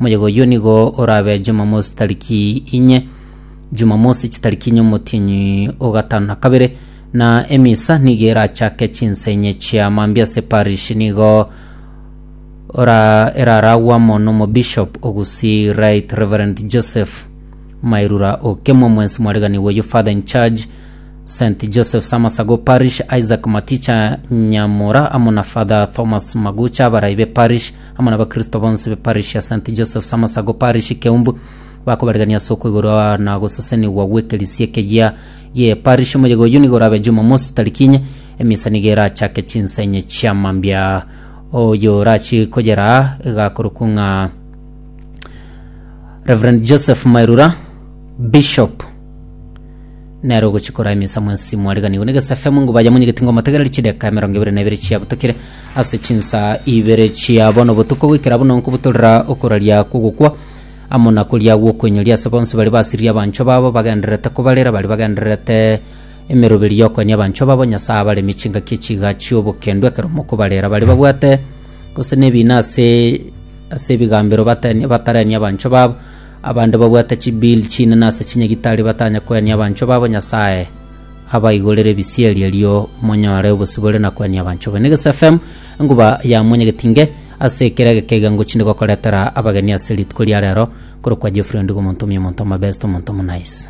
Omoyega oyio nigo orabe Jumamosi tariki inye, Jumamosi chitariki inye omotienyi o gatano na kabere, na emisa nigo erachake chinsa inye chia mambia ase parish nigo ora eraragwe amo n'omobishop o Gusii Right Reverend Joseph Mairura Okemo, omwensi mwareganigwa oyio Father in Charge St Joseph's Amasago Parish Isaac Maticha Nyamura amo na Father Thomas Magucha abarai be parish amo n'abakristo bonsi be parish ya St Joseph's Amasago parish Keumbu bakobarigania ase okoigorwa na gosesenigwa gw'ekerisia ekeyia gie parish omoyega oyio nigo orabe Jumamosi tariki inye emisa nigo erachake chinsa inye chia mambia oyo orachi koyera igakorokwa ng'a Reverend Joseph Mairura Bishop nero gochikora emisa mwensi mwariganigwe negesefemu ngo baye monyegeti ngo motegereri chideka emerongo ebere na ebere chiabutokire ase chinsa ibere chia bono botuko goikera bono nkobutorera okoraria kogokwa amo na koria gwokwenyoria ase bonsi bari basiririe abanchwa babo bagendererete kobarera bari bagendererete emeroberi yokoenia abanchwa babo nyasaye abaremi chingaki echiga chiobokendwa ekero mokobarera bari babwate gose nebina ase ase ebigambero bateni batarenia abanchwa babo Abanto babwate chibiiri chinene ase chinyagitari batanye koenia abanchwa babo Nyasae abaigorere ebisieri erio monyore obosibore na koenia abanchwa bene. Gese FM enguba ya monyegeti nge ase ekero egeka egengo chinde gokoretera abageni ase rituko ria rero korokwa Geoffrey Ondigo omonto omuya omonto omobest omonto omonaice.